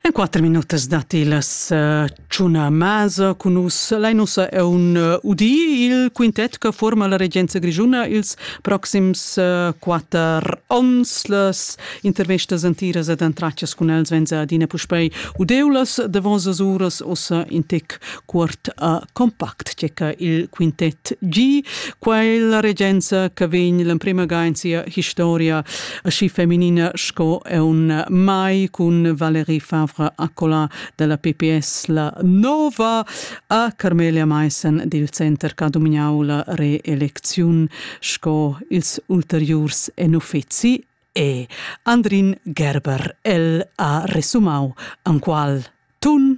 En quatter minutas dat las eh, tschuna masa cun nus. Lai nussa è un eh, udi, il quintet che forma la regenza grigiuna ils proxims eh, quatter ons. Las intervestas antiras ed antraccias cun els venza adina puspei udeulas davos as uras ossa in tec cuort a compact tgeca il quintet G, quella regenza che vegn l'emprema ga in sia historia aschi feminina sco è un mai cun Valérie Favre Accola della PPS la nova a Carmelia Maissen dil center che ha dominau la reelecziun sco ils ulteriurs en uffizi e Andrin Gerber el ha resumau an qual tun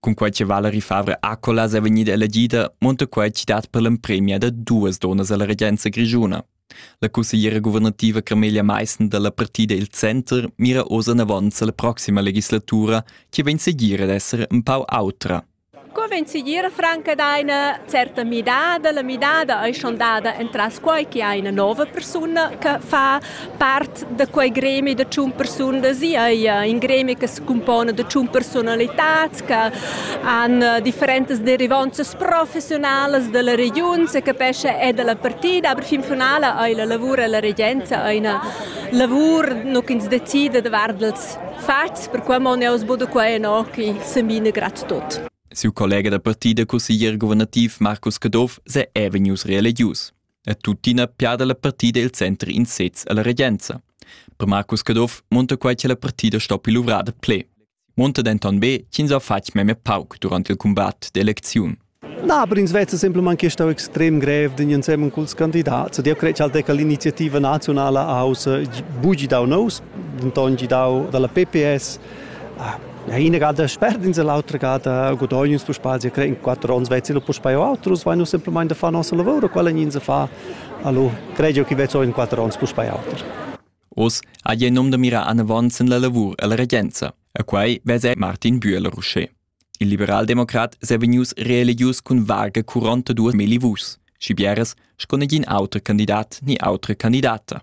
Cunquai che Valerie Favre Accolas è vegnida elegida, monta quai citat per l'empремia da duas donas a la regenza grischuna. La consigliera guvernativa Camelia Meissen dalla partida Il Center mira oz anavant alla prossima legislatura che vegn seguir ad essere un pau autra. Co vegn seguir franca da una certa midada? La midada è schon dada entras quai che ha una nuova persona che fa Part da quei gremi da tschun persunas ei in gremi che secumpona da tschun personalitats che han eh, differentas derivanzas professionalas dalla regiun, se capesce è dalla partida, aber fin finale ei la lavur e la regenza eine lavur no ins decide da vardels fats, per quei mon aus bodo quei no che sembina grad tot. Siu collega da partida, cusseglier guvernativ Marcus Caduff, se è vegnius reelegius. è tuttina piada la partida il center in sez alla regenza. Per Marcus Caduff monta quai che la partida stoppi luvrada ple. Monta denton be ch'ins ha fatg memia pauc durante il combat d'eleziun. Da, per ins vezza semplamain che stau extrem grev d'in ensemen culs candidats. Eu cred ch'al deca l'iniziativa nazionala aus bugi dau nous, denton gidau dalla PPS. Ah, La ina gada sperdins e l'autra gada gudognins tu spazi cre in quattro ons vezzi lo puspei autros vai nu semplamaing da far nossa lavora quella nin se fa allo credio chi vezzo in quattro ons puspei auter Oz ha il nom da mirar anavant sin la lavur e la regenza e quai vesa Martin Bühler Ruschè. Il liberaldemocrat s'è vegnius reeligius cun varga 42 mili vuschs, schi bieras sco negin auter candidat ni autra candidata.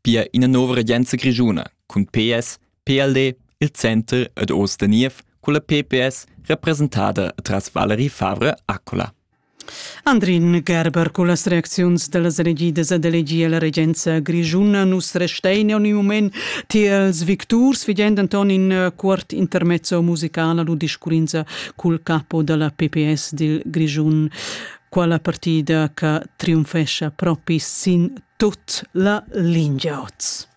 Pia ina nova regenza grischuna cun PS, PLD, il center ed oz da niev culla PPS representada tras Valerie Favre-Accola. Andrin Gerber cullas reacziuns dallas elegidas ad elegier la regenza grischuna nus restein en il moment tiels victurs figend anton in eh, cuort intermezzo musicala lu discurrinza cul capo dalla PPS dil Grischun. quala partida che triumfescha propi sin tut la lingia oz.